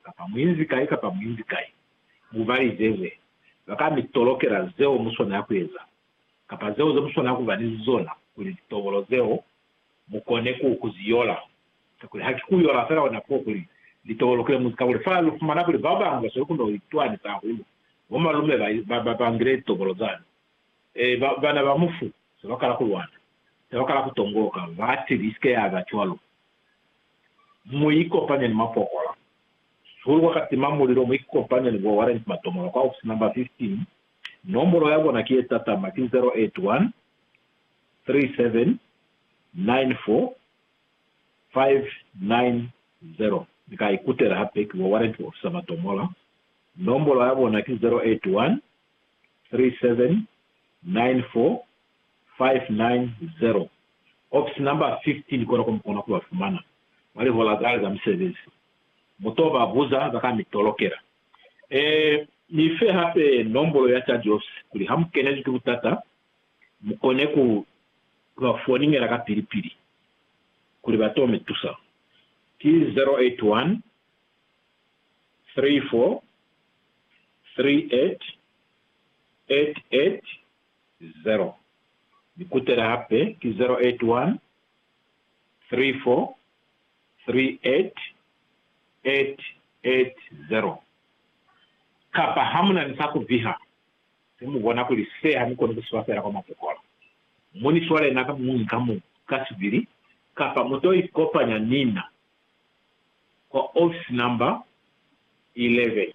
kapa muinzi kai kapa muinzi kai, mubalizeze, baka mi tolokela zeo muswanela kueza, kapa zeo zemuswanela kuba ni zona, kuli litobolo zeo mukone ku kuziyola, kakuli haki kuyola fela ona ko kuli litobolo kulemuzi, kakuli fa lufumana kuli babañwi basweli kuno litwani za hulu, bo malume ba, ba, ba, bangile litobolo zani, e, ba, bana ba mufu, sebakala kulwana, sebakala kutongoloka, bati, Isike yaba cwalo. Mu ikopanye ni mapokola. Sihulu kwa ka tima mulilo, mu ikopanye ni bo Warrant Matomola kwa ofisi number 15. Nombolo ya bona ki ye tatama, ki 081 3794 590. Ni ka ikutela hape ki bo Warrant Officer Matomola. Nombolo ya bona ki 081 3794 590, Office number 15 kona ko mu kona ku ba fumana mwa lihola zale za musebezi. Mu to ba buza za ka mi tolokela. Ee, mi fe hape nombolo ya charge office kuli ha mu kenezwi ki butata mu kone ku ba foningela kapili-pili kuli ba to mi tusa. Ki 081 34 38 88 0. Ni kutela hape ki 081 34 38 880. Kapa ha mu na ni sa ku viha, te mu bona kuli se ha ni koni ku si fa feela kwa mapokola. Mu ni swale na ka muñwi ka muñwi ka sibili, kapa mu to ikopanya ni na kwa ofisi namba 11.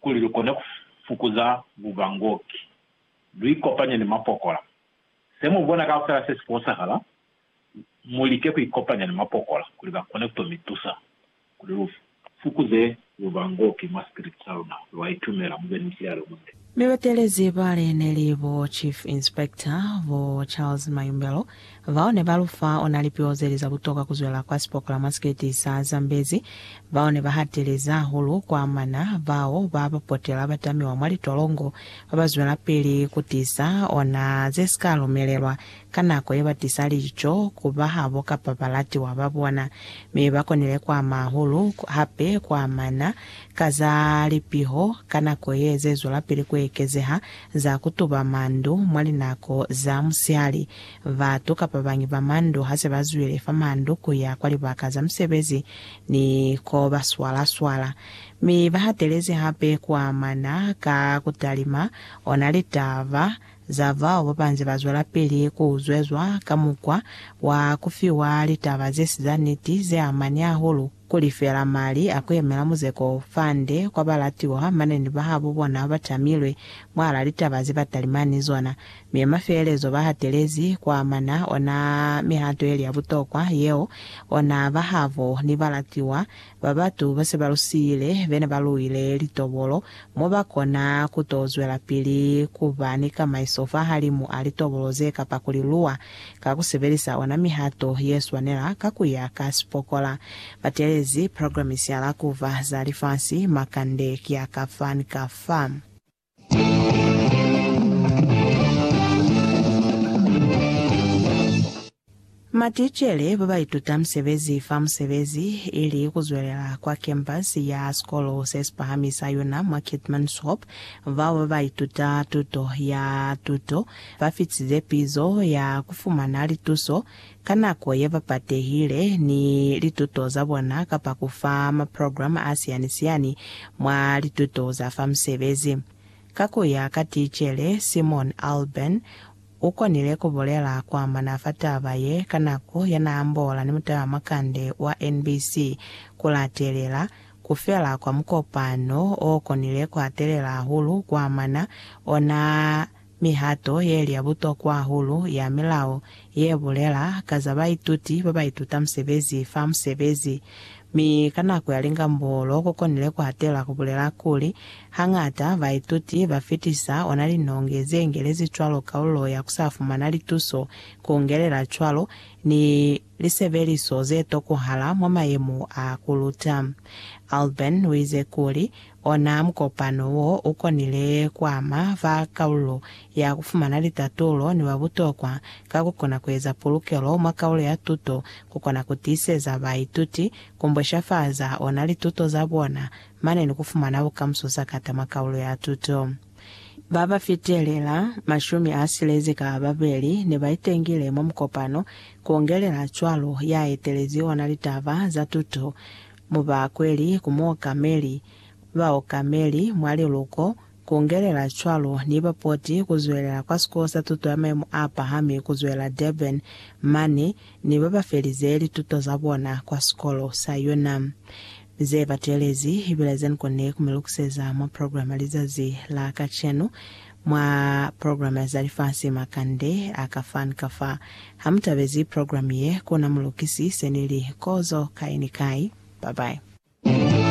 kuli lu kone ku fukuza bubangoki, lu ikopanye ni mapokola. Se mu bona kaufela se si fosahala, mu like ku ikopanya ni mapokola kuli ba kone ku to mi tusa kuli lu fukuze bubangoki mwa sikiliti sa luna. Lwa itumela mu be ni mushilalo munde. Mi batelezi bale neli bo Chief Inspector, bo Charles Mayumbelo, bao ne ba lufa ona lipio zeli za butoka kuzwela kwa sipokola mwa siketi sa Zambezi, bao ne ba hateleza hahulu kwa mana bao ba ba potela ba tamiwa mwa litolongo ba ba zwelapili ku tisa ona ze sika lumelelwa ka nako ye ba tisa lico ku ba habo kapa balatiwa ba bona, mi ba konile kwa ama hahulu hape kwa mana Ka za lipiho ka nako ye ze zwelapili ku ekezeha za ku tuba mandu mwa linako za musihali, batu kapa bañi ba mandu ha se ba zwile fa mandu ku ya kwa libaka za musebezi ni ko ba swala-swala, mi ba hatelezi hape ku amana ka ku talima ona litaba za bao ba ba nze ba zwelapili ku uzwezwa ka mukwa wa ku fiwa litaba ze si za niti ze amani hahulu. Kuli fela mali a ku yemela muzeko u fande kwa balatiwa mane ni bahabo bona ba tamilwe mwalaa litaba ze ba talimani ni zona, mi ma feelezo ba hatelezi ku amana ona mihato yeli ya butokwa yeo ona bahabo ni balatiwa ba batu ba se ba lu siile be ne ba luile litobolo mo ba kona ku to zwelapili ku ba ni kamaiso fahalimu a litobolo ze kapa ku li luwa Ka ku sebelisa ona mihato ye swanela ka ku ya ka sipokola, ba teelezi programisi ya lakuva za lifasi makande ya ka fa ni ka fa. Maticele ba ba ituta musebezi fa musebezi ili ku zwelela kwa kempasi ya Sikolo se Sipahami sa Yona mwa Keetmanshoop, bao ba ba ituta tuto ya tuto ba fitize pizo ya ku fumana lituso ka nako ye ba patehile ni lituto za bona kapa ku fa maprograma a siyani-siyani mwa lituto za fa musebezi. Ka ku ya ka ticele Simon Alban, u konile ku bulela ku amana fa taba ye ka nako ya n'a ambola ni mutalamakande wa NBC ku latelela ku fela kwa mukopano o konile ku hatelela hahulu ku amana ona Mihato ye li ya butokwa hahulu ya milao ye bulela ka za baituti ba ba ituta musebezi fa musebezi, mi ka nako ya lingambolo ku konile ku hatela ku bulela kuli, Hañata baituti ba fitisa ona linonge ze ngelezi cwalo kaulo ya ku sa fumana lituso ku ngelela cwalo ni lisebeliso ze tokohala mwa mayemo a ku luta. Alban uize kuli, Ona mukopano wo u konile ku ama ba kalulo ya ku fumana litatulo ni ba butokwa ka ku kona ku eza pulukelo mwa kalulo ya tuto, ku kona ku tiiseza baituti, ku mbweshafaza ona lituto za bona, mane ni ku fumana bukamuso sakata mwa kalulo ya tuto. Ba ba fitelela mashumi a silezi ka babeli ne ba itengile mwa mukopano, ku ongelela cwalo ya etelezi ona litaba za tuto mu bakweli ku muokameli, baokameli mwa liluko, ku ongelela cwalo ni bapoti ku zwelela kwa Sikolo sa Tuto ya Maimo a Pahami ku zwela Durban mane, ne ba ba felize lituto za bona kwa sikolo sa yona. Ze batelezi ibile ze ni konile ku mi lukuseza mwa programa lizazi la kacenu. Mwa programa za lifasi makande a ka fa ni ka fa. Ha mu tabezi programa ye, kona mu lukisi se ni li, Kozo kai ni kai. Bye bye.